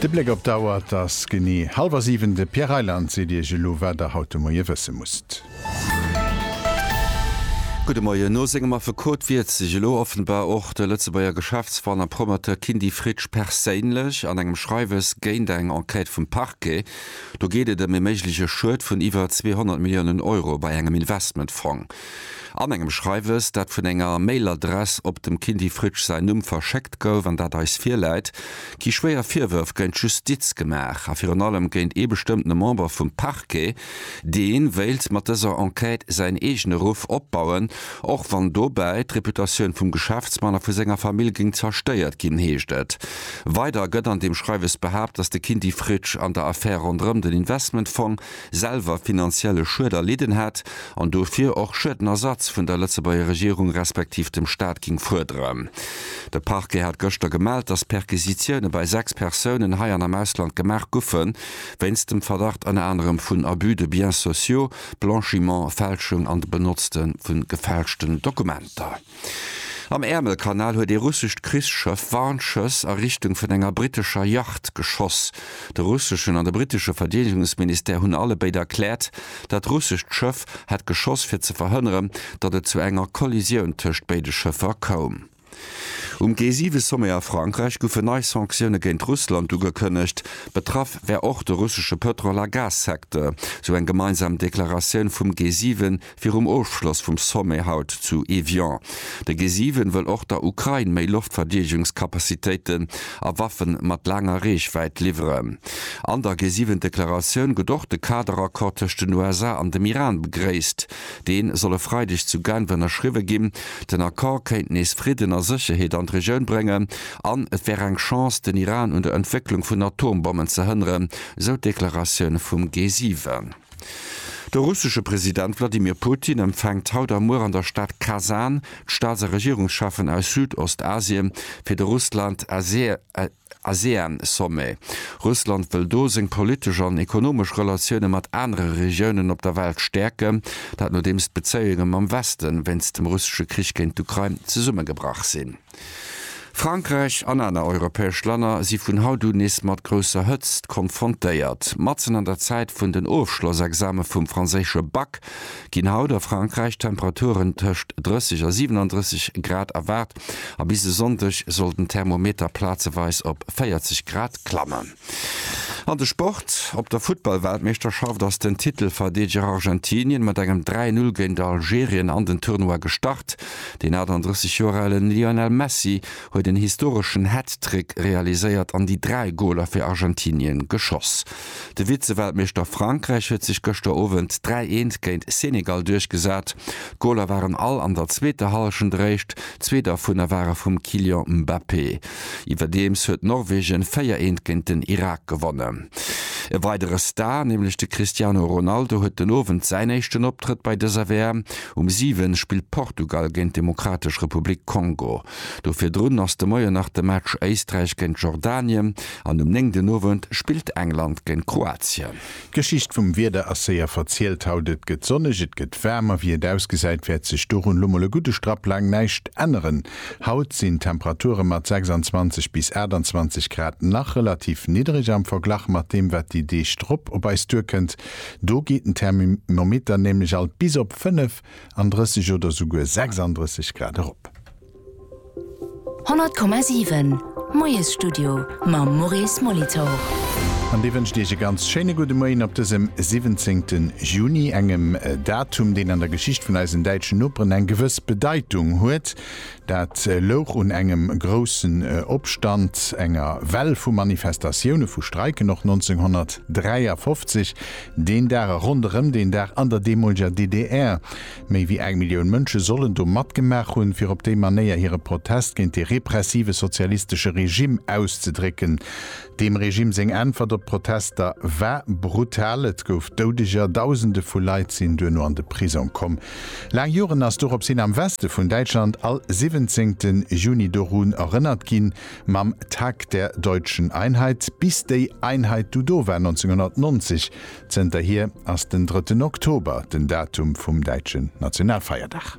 De Bléck op d'Auer, et ass genee hallwer 7. De Pierre Reyland seet Iech elo, wat Der haut de Moie wësse musst. Gudde Moien. No sengem Affekot wiert sech elo offenbar och de Lëtzebuerger Geschäftsmann a Promoteur Kindy Fritsch perséinlech an engem Schreiwes géint eng Enquête vum Parquet. Do geet et ëm e méigleche Schued vun iwwer 200 Milliounen Euro bei engem Investmentfong. An engem Schreiwes, dat vun enger Mailadress op dem Kindy Fritsch säin Numm verschéckt gouf an dat eis virläit, gi schwéier Virwërf géint d'Justiz gemaach a virun allem géint ee bestëmmtene Member vum Parquet, dee wéilt mat dëser Enquête säin eegene Ruff opbauen, och wann dobäi d'Reputatioun vum Geschäftsmann a vu senger Famill géing zerstéiert ginn, heescht et weider. Gëtt an deem Schreiwes behaapt, datt de Kindy Fritsch an der Affär ronderëm den Investmentfong, selwer finanzielle Schued erlidden hätt an dofir och Schuedenersatz vun der Lëtzebuerger Regierung respektiv dem Staat ging fuerderen. De Parquet hat gëschter gemellt, dass Perquisitioune bei 6 Persounen hei an am Ausland gemaach guffe wéinst dem Verdacht ënner anerem vun Abus de biens sociaux, Blanchiment, Fälschung an de Benotzte vu gefälschten Dokumenter. Am Äermelkanal huet ee russescht Krichsschëff Warnschëss a Richtung vun enger brittescher Yacht geschoss. De russeschen an de brittesche Verdeedegungsministère hunn alle béid erkläert, dat russescht Schëff hätt geschoss fir ze verhënneren, datt et zu enger Kollisioun tëscht béide Schëffer koum. Um G7-Sommet a Frankräich goufen nei Sanktioune géint Russland ugekënnegt. Betraff wär och de russesche Pëtrol a Gas-Secteur, sou eng gemeinsam Deklaratioun vum G7, Virum Ofschloss vum Sommet haut zu Evian. De G7 wëll och der Ukrain méi Loftverdeedegungscapacitéiten a Waffen mat laanger Reechwäit liwweren. An der G7-Deklaratioun gëtt och de Kaderaccord tëscht den USA an dem Iran begréisst. Dee soll e Freideg zu Genf ënnerschriwwe ginn. Den Accord kéint nees Fridden a Sécherheet an d'Regioun bréngen an et wär eng Chance, den Iran un der Entwécklung vun Atombommen ze hënneren, sou d'Deklaratioun vum G7. De russesche President Wladimir Putin empfänkt haut a muer an der Stad Kasan d'Staats a Regierungscheffen aus Südostasien fir de Russland-ASEAN-Sommet. Russland wëll do seng politesch an ekonomesch Relatioune mat anere Regiounen op der Welt stäerken, dat nodeems d'Bezéiunge mam Weste wéinst dem russesche Krich géint d'Ukrain zesummegebrach sinn. Frankräich an aner europäesch Länner si vun haut un nees mat grousser Hëtzt konfrontéiert. Matzen an der Zäit vun den Ofschlossexame vum franséische Bac ginn haut a Frankräich Temperaturen tëscht 30 a 37 Grad erwaart a bis e Sonndeg soll den Thermometer plazeweis op 40 Grad klammen. An de Sport, Op der Futtballweltmeeschterschaft ass den Titelverdeedeger Argentinien mat engem 3-Null géint Algerien an den Tournoi gestart. Deen 38 Joer alen Lionel Messi huet en historeschen Hat-Trick realiséiert an déi dräi Goler fir Argentinien geschoss. De Vize-Weltmeeschter Frankräich huet sech gëschter Owend 3 Eent géint Senegal duerchgesat. D'Goler waren all an der zweeter Hallschent eréischt, zwee dervunner ware vum Kylian Mbappé. Iwwerdeems huet Norwegen 4 eent géint den Irak gewonnen. E weidere Star, nämlech de Cristiano Ronaldo huet den Owend säin éischten Optrëtt bei dëser WM. Um 7 spillt Portugal géint d'Demokratesch Republik Kongo. Do virdrun ass de Moien nach de Match Éisträich géint Jordanien an um 9 den Owend spillt England géint Kroatien. D'Geschicht vum Wieder ass séier verzielt. Haut et gëtt sonneg, et gëtt waarm a wéi et ausgesäit wäert sech dorun lo mol e gudde Strapp laang näischt änneren. Haut sinn d'Temperature mat 26 bis 28 Grad nach relativ niddereg am Verglach mat deem wat déi Deeg drop op eis duerkënnt. Do geet den Thermimometer nämlech alt bis op 35 oder souguer 36 Grad erop. 100,7 Moiesstudio mam Maurice Molitor. An dee wënscht Iech e ganz schéine gudde Moien op dësem 17 Juni, engem Datum, deen an der Geschicht vun eisen däitschen Noperen eng gewëss Bedeitung huet. Dat louch un engem groussen Opstand, enger Well vu Manifestatioune, vu Streiken och 1953, deen Dag a ronderëm deen Dag an der deemoleger DDR. Méi wéi eng Millioun Mënsche sollen do matgemaach hunn, fir op déi Manéier hire Protest géint dee repressive sozialistesche Regimm auszedrécken. Deem Regimm seng Äntwert op d'Protester war brutal, et gouf Doudeger, Dausende vu Leit sinn duerno an de Prisong komm. Laang Joren ass dorops hin am Weste vun Däitschland all siwwenzéngte Juni dorun erënnert ginn, mam Tag der deutschen Einheit, bis déi Einheit du do war, 1990, Zënterhier ass den drëtten Oktober den Datum vum däitschen Nationalfeierdag.